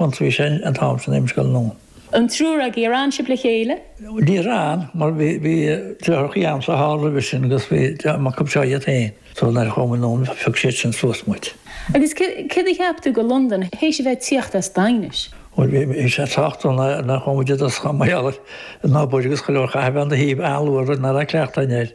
bhí sé an t-am sin i mo scoil nó. an triúr agaibh ar fhan sibh le chéile? níor fhan mar bhí bhí deartháir a'msa thall roimhe sin agus bhí deartháir mac a'mseo iad féin so nuair a chuamar anonn phioc siad sin suas muid. Agus céard a cheap tú dho Londain théis a bheith tíocht as Daighinis? Bhuel bhí bhí sé sách dona nuair a chuaigh muid i dtosach mar gheall an bóthar agus go leor chaithfeá a bheith an dá thaobh a'luath rud nach raibh cleachtadh a'inn air.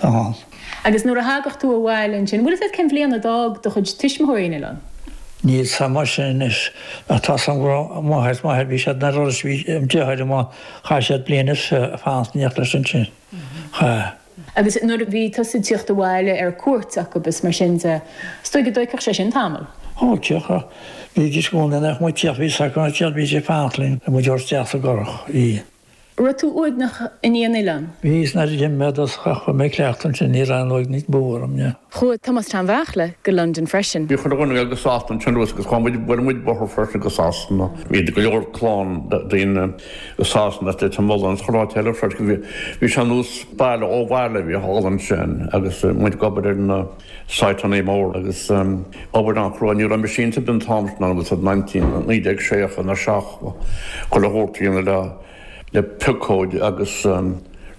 thall. Agus nuair a thagadh tú abhaile ansin, bhfuil 'fhios a'd cén bhliain a d'fhág do chuid tuismitheoirí an oileán? Níl 's a'm sin anois. Ach tá 's a'm go raibh m'athair 's m'athair, bhí siad i nDúros, bhí driotháir a'm, chaith siad bliain is fiche ag fanacht leis ansin. Chaith. Agus nuair a bhí tusa ag tíocht abhaile ar cuairt acub is mar sin de, 's doigh go dtóigfeadh sé sin tamall? Ó, thiocfadh. Bhídís i gcónaí nach mó ag tíocht, bhí sacar ag tíocht, bhí siad ag fanacht linn le muid a thabhairt isteach sa gcurach. Bhí. Raibh tú uaigneach i ndiaidh an oileáin? Bhíos nuair a d'imigh mé i dtosach. Fuair mé cleachtadh ansin, ní raibh an uaigneas beo orm, ní. Chuaigh Tomás Sheáin Bheachla go Londain freisin. Bhí chuile dhuine ag goil go Sasana an t-am sin agus chuaigh muid, bhuail muid bóthar freisin go Sasana. Bhí go leor clann daoine go Sasana agus i mBolóine agus chuile áit eile freisin. Bhí sé ar nós baile ó bhaile a bhí thall ansin agus muid ag obair ar na. Siteannaí móra agus obair an-chrua. Ní raibh aon mheaisínte ann an t-am sin an nineteen naoi déag seachtó a seacht nó chuile shórt déanamh le le piocóid agus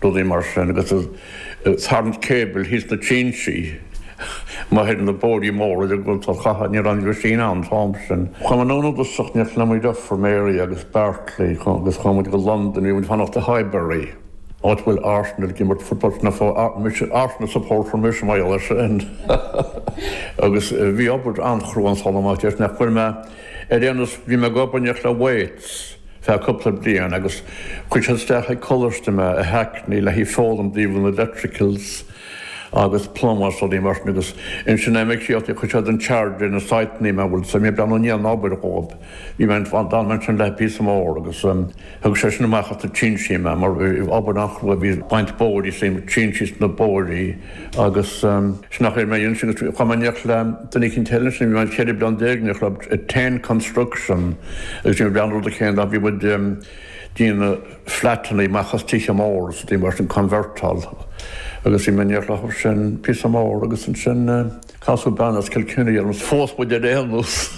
rudaí mar sin agus tarraingt cable thíos na trinsí má thuigeann na bóithrí móra de go tá catha ní raibh aon mheaisín ann an t-am sin. Chuaigh muid anonn i dtosach ní raibh mo dheirfiúr, Mary agus Bartley agus chuaigh muid go Londain bhí muid ag fanacht i Highbury. Áit a bhfuil Arsenal ag imirt football na fo mise Arsenal supporter mise mar gheall ar sin. Agus bhí obair an-chrua an saol amach deis nach bhfuil mé ar aon nós bhí mé ag obair i Newly Weds feadh cúpla bliain agus chuir siad isteach ag coláiste mé i Hackney le haghaidh foghlaim dtaobh na electricals agus plumbers rudaí mar sin agus ansin ag imeacht chuir siad in charge ar an site mé a bhfuil 's a'd ag breathnú i ndiaidh an obair dhóibh Bhí mé in éindí leo sin píosa mór agus thug seisean amach as na trinsí mé mar bhí obair an-chrua, bhí ag baint bóithrí is ag trinseáil na bóithrí agus sin nach raibh mé ansin agus chuaigh mé in éineacht le duine eicínt eile ansin, bhí mé ann ceithre bliana déag in éineacht leo, Tan Construction agus sin b'é an rud a chéanna ach bhí muid ag déanamh flatannaí amach as tithe móra is rudaí mar sin, convertáil agus bhí mé in éineacht leo sin píosa mór agus ansin. Casadh bean as Kilkenny orm. Phós muid ar aon nós.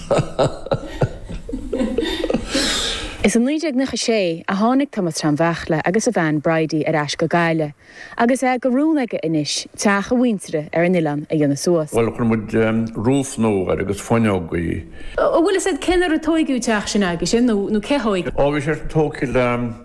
Is i 1996 a tháinig Tomás Sheáin Bheachla agus a bhean Bridie ar ais go Gaillimh agus é de rún aige anois teach a mhuintire ar an oileán a dhéanamh suas. Bhuel, chuir muid roof nua air agus fuinneogaí. Bhfuil 'fhios a'd cén uair a tóigeadh an teach sin aigesean nó cé thóig? Ó, bhí sé sin tóigthí le.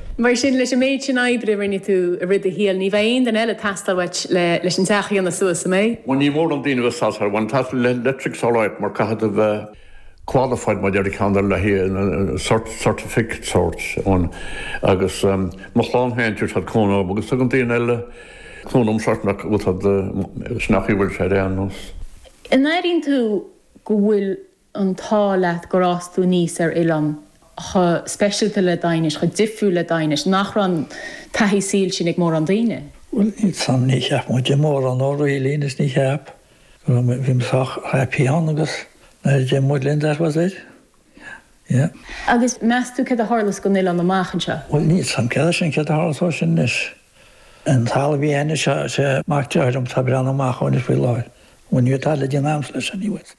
Mar sin, leis an méid sin oibre a rinne tú i rith do shaoil, ní bheidh aon duine eile ag teastáil uait leis an teach a dhéanamh suas, an mbeidh? Bhuel, níl mórán daoine a bheith sásta ar bhain teastas leictrigh uait mar caithfidh tú bheith qualified má deir ceann ar leith é, sort certificate sóirt ann agus mo chlann féin tabharfaidh siad cúnamh dom agus tugann daoine eile cúnamh dom sort nach bhfuil siad, is nach í bhfuil sé ar aon nós. An airíonn tú go bhfuil an t-ádh leat gur fhás tú aníos ar oileán chomh speisialta le Daighinis, chomh difriúil le Daighinis, nach raibh an taithí saoil sin ag mórán daoine? Bhuel, níl a fhios agam, níor cheap muid mórán dó really anois, níor cheap. Go raibh muid, bhí muid sách happy ann agus nár deir muid linn that was it. Yeah. Agus meas tú céard a tharlós gon oileán amach anseo? Bhuel, níl a fhios agam, céard é sin, céard a tharlós dó sin anois? An talamh a bhí anois, sea, sea, mac dearthár liom tá ag breathnú amach dó anois faoi láthair. An méid talamh le díon ams leis anyways.